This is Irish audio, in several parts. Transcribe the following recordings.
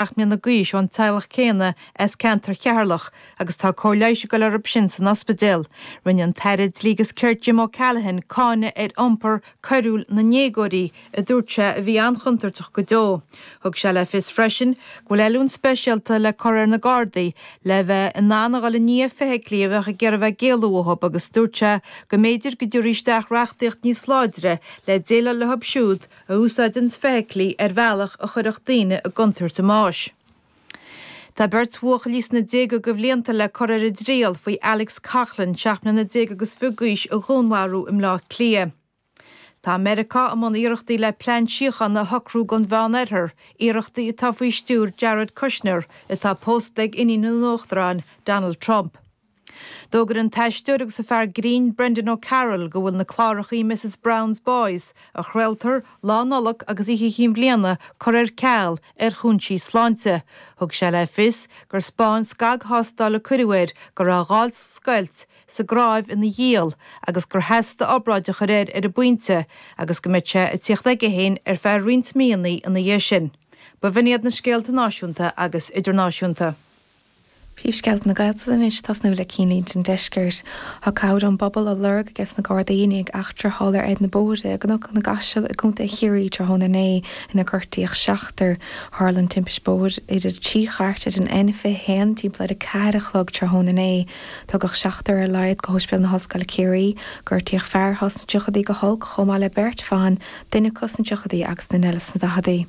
seacht mbliana d'aois ón teaghlach céanna as ceantar Cheatharlach agus tá cóir leighis ag dul orthu sin san ospidéal. Rinne an tAire Dlí agus Cirt Jim O'Callaghan cáineadh ar iompar coiriúil na ndéagóirí a dúirt sé a bhí an-chontúirteach go deo. Thug sé le fios freisin go bhfuil oiliúint speisialta le cur ar na Gardaí le bheith in ann a dhul i ndiaidh feithiclí a bheadh ag iarraidh bheith ag éalú uathu agus dúirt sé go mb'fhéidir go dtabharfaí isteach reachtaíocht níos láidre le déileáil leo siúd a úsáideanns feithiclí ar bhealach a chuirfeadh daoine i gcontúirt a mbáis. Tá beirt bhuachaillí sna déaga de bhlianta le cur ar a dtriail faoi Alex Coughlan, seacht mbliana déag agus fiche d'aois, a dhúnmharú i mBleá Cliath. Tá Meiriceá i mbun iarrachtaí le plean síochána a shocrú don Mheán-Oirthear, iarrachtaí atá faoi stiúir Jared Kushner, atá pósta ag iníon an Uachtaráin, Donald Trump. D'fhógair an t-aisteoir agus an fear grinn Brendan O'Carroll go bhfuil na clárachaí Mrs Brown's Boys, a chraoltar Lá Nollag agus Oíche Chinn Bhliana, curtha ar ceal ar chúinsí sláinte. Thug sé le fios gur 'speáin scagthástáil a cuireadh air go raibh a ghált, scoilt, sa gcnáimh ina ghiall agus gur theastaigh obráid a chur air ar an bpointe agus go mbeadh sé ag tíocht aige féin ar feadh roinnt míonnaí ina dhiaidh sin. B'in iad na scéalta náisiúnta agus idirnáisiúnta. Príomhscéalta na Gaeltachta anois, ag tosnú le cinnlínte an deiscirt. Tá cabhair ón bpobal á lorg ages na Gardaí i ndiaidh eachtra a tharla ar na bóithre i gCnoc na gCaiseal i gContae Chiarraí tráthnóna inné inar gortaíodh seachtar. Tharla an timpist bóthair idir trí chairt ar an N21 timpeall ar a ceathair a chlog tráthnóna inné. Tugadh seachtar ar a laghad go hOspidéal na hOllscoile Ciarraí. Gortaíodh fear atá sna tríochadaí go holc chomh maith le beirt bhan, duine acu sna tríochadaí agus duine eile sna daicheadaí.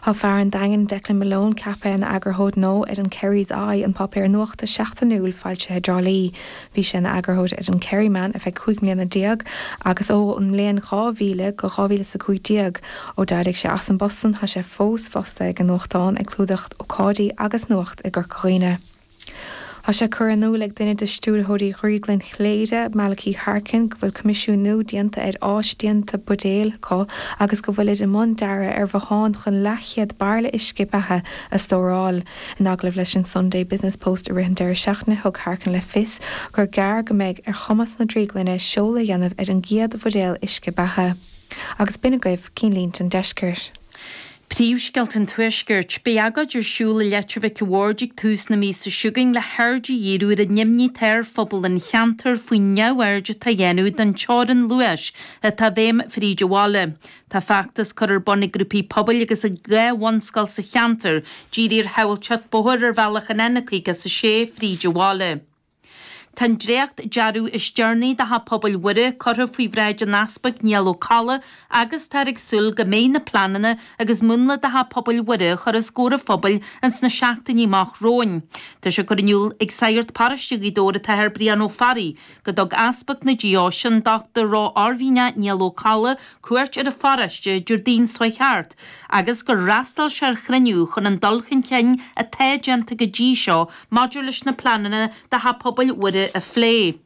Tá fear an Daingin, Declan Malone, ceaptha ina eagarthóir nua ar an Kerry's Eye, an páipéar nuachta seachtainiúil foilsithe i dTrá Lí. Bhí sé ina eagarthóir ar an Kerryman ar feadh cúig mbliana déag agus ón mbliain 2000 go dhá mhíle is a cúig déag. Ó d'éirigh sé as an bpost san tá sé fós fostaithe ag an nuachtán ag clúdach ócáidí agus nuacht i gCorca Dhuibhne. Tá sé curtha in iúl ag duine de stiúrthóirí Dhrioglann Chléire, Malachy Harkin, go bhfuil coimisiúnú déanta ar áis déanta buidéil acu agus go bhfuilid i mbun dearadh ar bhothán chun leathchéad bairille uisce beatha a stóráil. In agallamh leis an Sunday Business Post i rith an deireadh seachtaine, thug Harkin le fios gur gearr go mbeidh ar chumas na drioglainne seoladh a dhéanamh ar an gcéad bhuidéal uisce beatha. Agus b'in agaibh cinnlínte an deiscirt. Príomhscéalta an Tuaiscirt. Beidh agóid ar siúl i Leitir Mhic an Bhaird ag tús na míosa seo chugainn le haird a dhíriú ar an imní atá ar phobal an cheantair faoin neamhaird atá á dhéanamh den teorann luais atá i bhfeidhm fríd an bhaile. Tá feachtas curtha ar bun ag grúpaí pobail agus ag dhá bhunscoil sa cheantar dírithe ar shábháilteacht bóthair ar bhealach an N56 fríd an bhaile. Tá an dréacht dearadh is deireanaí de Theach Pobail Mhuire curtha faoi bhráid an Easpaig Niall Ó Colla agus táthar ag súil go mbeidh na pleananna agus múnla de Theach Pobail Mhuire a chur os comhair an phobail ins na seachtainí amach romhainn. Tá sé curtha in iúl ag Sagart Paróiste Ghaoth Dobhair an tAthair Brian Ó Fearraigh, go dtug Easpag na Deoise, an Dr. Ró-Oirmhinneach Niall Ó Colla cuairt ar an pharóiste Déardaoin seo chuaigh thart agus gur fhreastal sé ar chruinniú chun an dul chun cinn atá déanta go dtí seo maidir leis na pleananna do Theach Pobail Mhuire a phlé.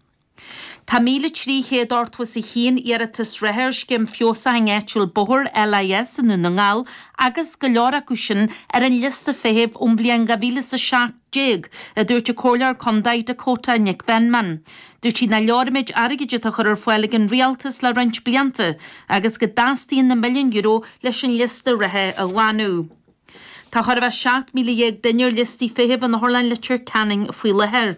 Tá 1,381 iarratas reatha ar scéim feabhsaithe áitiúil Bóthar LIS i nDún na nGall agus go leor acu sin ar an liosta feithimh ón bhliain 2017, a dúirt an Comhairleoir Condae Dakota Nic Mheanman. Dúirt sí nach leor an méid airgid atá á chur ar fáil ag an Rialtas le roinnt blianta agus go dteastaíonn na milliúin euro leis an liosta reatha a ghlanadh. Tá chóir a bheith 17,000 duine ar liostaí feithimh in Otharlann Leitir Ceanainn faoi láthair.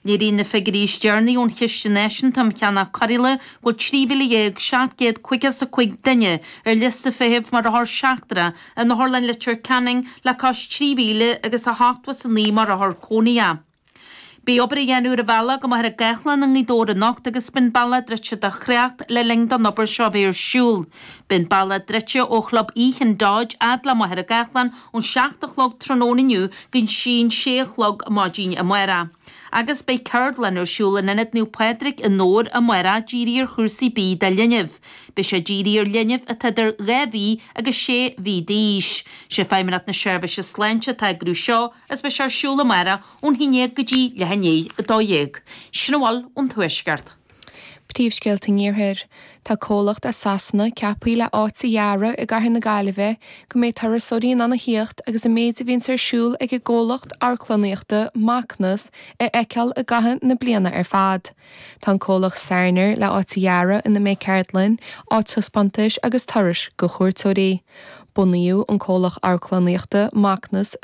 Léiríonn na figiúirí is deireanaí ón Chiste Náisiúnta um Cheannach Cóireála go bhfuil 13,755 duine ar liosta feithimh mar othar seachtrach in Otharlann Leitir Ceanainn le cois 3,000 agus 89 mar othar cónaithe. Beidh obair á dhéanamh ar an bhealach go Machaire Gathlán i nGaoth Dobhair anocht agus beidh an bealach druidte do thrácht le linn don obair seo a bheith ar siúl. Beidh an bealach druidte ó Chlub Oíche an Dodge fhad le Machaire Gathlán ón seacht a chlog tráthnóna inniu go dtí an sé a chlog maidin amárach. Agus beidh ceardlann ar siúl in Ionad Naomh Pádraig i nDobhair amárach dírithe ar chúrsaí bídh do linbh. Beidh sé dírithe ar linbh atá idir dhá mhí agus sé mhí d'aois. Sé Feidhmeannacht na Seirbhíse Sláinte atá ag eagrú seo. is beidh sé ar siúl amárach ón haon déag go dtí leath i ndiaidh a dó dhéag, sin a bhfuil ón Tuaisceart. Príomhscéalta an Iarthair. Tá comhlacht as Sasana ceapthaí le áit a dhearadh i gcathair na Gaillimhe go mbeidh turasóirí in ann a thíocht agus an méid a bhíonns ar siúl ag an gcomhlacht amharclannaíochta Macnas a fheiceáil i gcaitheamh na bliana ar fad. Tá an comhlacht Sarner le áit a dhearadh ina mbeidh ceardlainn, áit taispeántais agus turais do chuairteoirí. Bunaíodh an comhlacht amharclannaíochta Macnas sa.